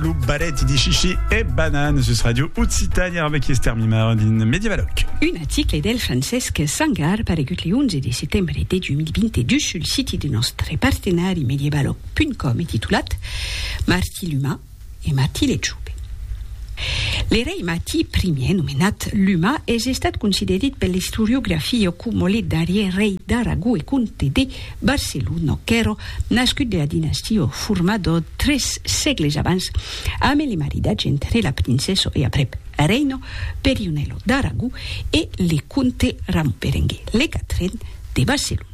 Lo barèti de chichi e banana sus Radio Occitània arbe qui Esther Mimar din Medievaloc. Un article del Francesc Sangar paregut le 11 de setembre de 2022 sul siti de nòstre partenari medievaloc.com e titulat Martí l'Umà e Martí le Chube. Le rei Martí Ier, nomenat l'Umà, es estat considerit per l'istoriografia coma le darrièr rei d'Aragó e comte de Barcelono qu'èro nascut de la dinastia o formado tres sègles abans amé le maridatge entre la princeso e aprèp reino Perionello d'Aragó e le comte Ramon Berenguer le quatren de Barcelono.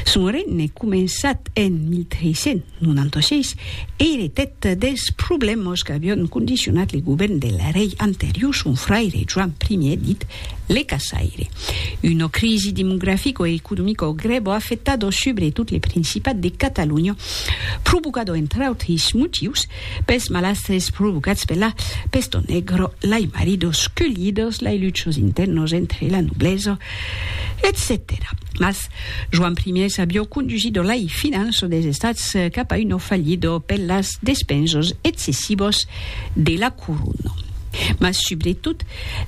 Son regne començat en 1396 eiretèt dels problèmas qu'avion condicionat le govèrn del rei anterior son fraire Joan Ier dit Le caçaire. Una crisi demografico-economico grèvo afectado subretot le Principat de Catalonha, provocado entre autris motius pels malastres provocats per la pesto negro, lai maridos cullidos, lai luchos internos entre la noblesa, etcetèra. Mas Joan I avió condusido lai finanças des estats cap a una fallida per las despensas excessivas de la corona. Mas subretot,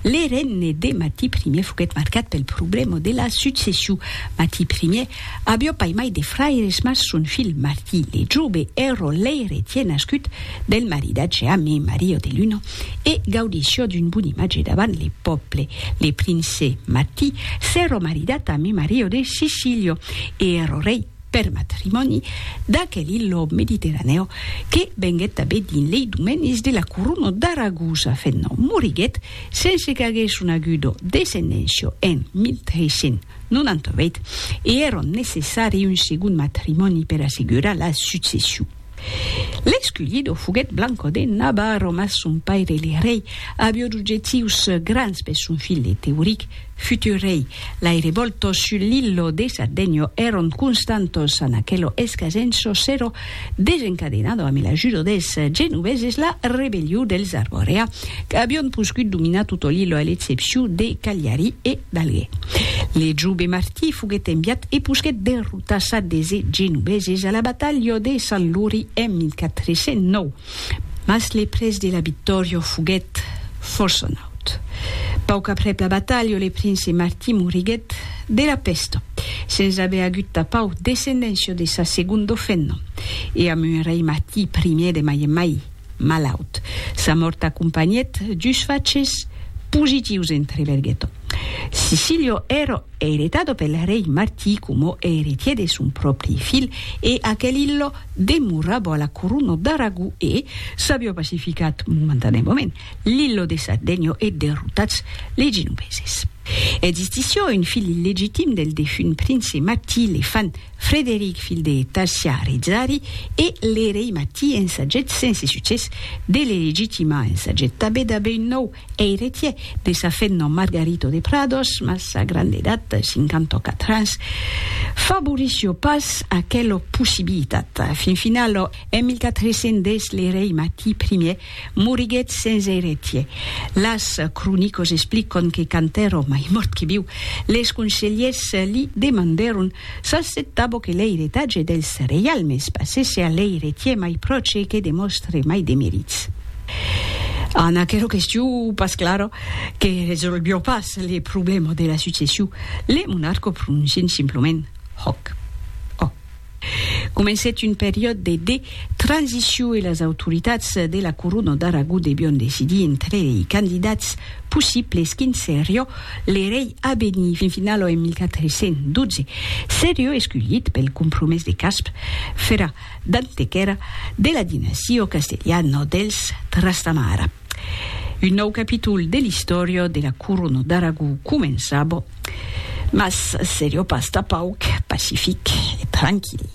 le regne de Mati Ier foguèt marcat pel problèma de la succession. Mati Ier aviá pas mai de fraires mas son filh Mati le Jove èra l'eiretièr nascut del maridatge amb Maria de Luna e gaudissiá d'un bon imatge davant le pòble. Le prince Mati s'èra maridat amb Maria de Sicília e èra rei per matrimòni, d'aquel ilhò mediterranèu que venguèt tanben dins lei domenis de la corona d'Aragosa fent nom. Moriguèt sense qu'aguèsse una agudo descendéncia en 1398 e èron necessari un segond matrimòni per assegurar la succession. L'escullido foguèt Blanco de Navarro, mas son paire le rei avió d'objectius grands per son filh Teuric, futur rei. Lai revòltos sul l'illo de Sardegno èron constantos an aquelo escasenço s'èro desencadenado amé l'ajudo dels genoveses la rebelliu dels Arborea qu'avión poscut dominar toto l'illo a l'excepciu de Cagliari e d'Alger. Le jove Martí foguèt enviat e posquèt de Tassat de se genobeses a la batalha de Sant Luri en 1409, mas le prètz de la victòria foguèt fòrça naut. Pauc aprèp la batalha le prince Martí moriguèt de la pèsta, sens aver agut tapau descendéncia de sa segonda femna, e amb un rei Martí I de mai en mai, malaut. Sa mòrt acompanhèt dus faches positius entre Berghetto. Sicilio ero eretado pel rei Martí coma eretier de son pròpri filh e aquel illo demorabo a la corona d'Aragó e s'avió pacificat momentaneamament l'illo de Sardegno e derrotats les genoveses. Existissió un filh illegitim del defunt prince Martí, le fan Frederic, filh de Talsià Rizari, e l'erei Mati ensagèt sense succès de le legitimar, ensagèt tanben d'aver un nòu eiretièr de sa fenna Margarito de Prados, mas sa granda edat, 54 ans, favorissió pas aquela possibilitat. Fin finala, en 1410, l'erei Mati I Moriguèt sens eiretier. Las cronicos expliquon que quand èrò mai mòrt que viu, les conselhers li demandèron s'acceptabo que l'eiretatge dels reialmes passèsse a l'eiretier mai pròche que demòstre mai de merits. En aquero questiu pas clara, que resolvió pas le problema de la succession, le monarco prononcien simplement Hoc. Comencèt un periòde de de transiciu e las autoritats de la Corona d'Aragó devion decidir entre lei candidats possibles quin serió le rei a venir. Fin finala en 1412 serió esculhit pel compromés de Casp fera d'antequèra de la dinastia castelhana dels Trastamara. Un nòu capítol de l'istòria de la Corona d'Aragó començava, mas seriá pas tà pauc pacific e tranquil.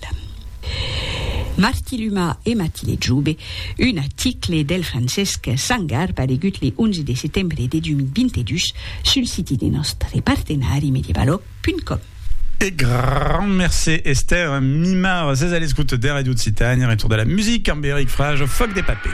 Martí Luma e Matile Jobe, un article del Francesc Sangar paregut le 11 de setembre de 2022 sul siti de nòstre partenari medievaloc.com. E grand mercé Esther Mimard, sés a l'escouta de Radio Occitània, retorn de la musica amb Eric Frage, Fòc de papé.